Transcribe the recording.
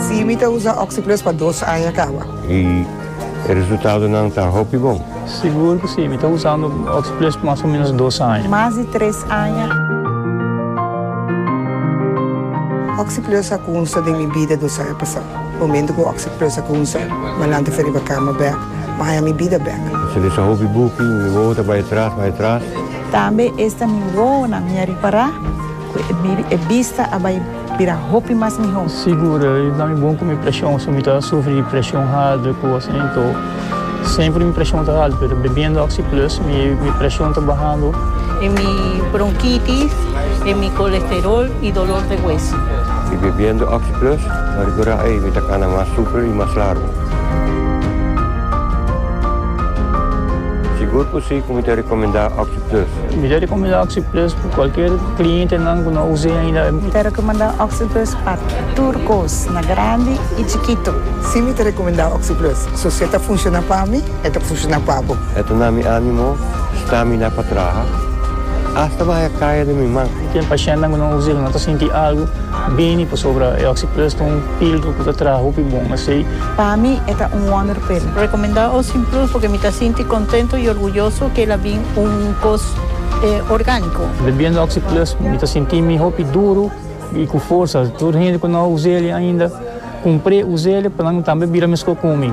Si mi ta usa Oxyplus pa dos aña kaba. Y e resultadonan ta hopi bon. Sigur cu si, mi ta usando Oxyplus pa mas o menos dos aña. Mas di tres aña. Oxyplus a cunsa den mi bida dos aña pasa. Momento cu Oxyplus a cunsa, mi a lanta fi riba cama bek, mi a haya mi bida bek. Mi sali sa hopi buki, mi wou ta bay atras, bay atras. Tambe esta mi wowonan mi a ripará ku e bista a bai bira hopi mas mihó. Sigur, i ta mi bon ku mi preshon, si mi ta sufri di preshon haltu i kos asina, to semper mi preshon ta haltu, pero bebiendo Oxi Plus mi preshon ta bahando. E mi bronkitis, e mi kolesterol i dolor de hueso. I bebiendo Oxi Plus, ta ripará ei, mi ta kana mas super i mas largu. Sigur ku si. Mi ta recomenda Oxyplus. Mi ta recomenda Oxyplus pa cualkier clientenan cu no a us'e ainda. Mi ta recomenda Oxyplus pa tur cos, na grandi y chikito. Si, mi ta recomenda Oxyplus. So si e ta funciona pa mi, e ta funciona pa bo. E ta na mi animo, stamina pa traha, hasta bahaya caya den mi man. Ten pacientnan cu no a us'e, cu no ta sinti algo bini pasobra e Oxyplus ta un. Pildo ku ta traha hopi bon asei. Pa mi e ta un wonderpil. Rekomendá Ocean Plus porque mi ta sinti kontento i orguyoso ke el a bin un kos orgániko. Bebiendo Oxi Plus mi ta sinti mi hopi duru i ku forsa. Tur hende ku no a us'e ainda, kumpr'e, us'e pa nan tambe bira meskó ku mi.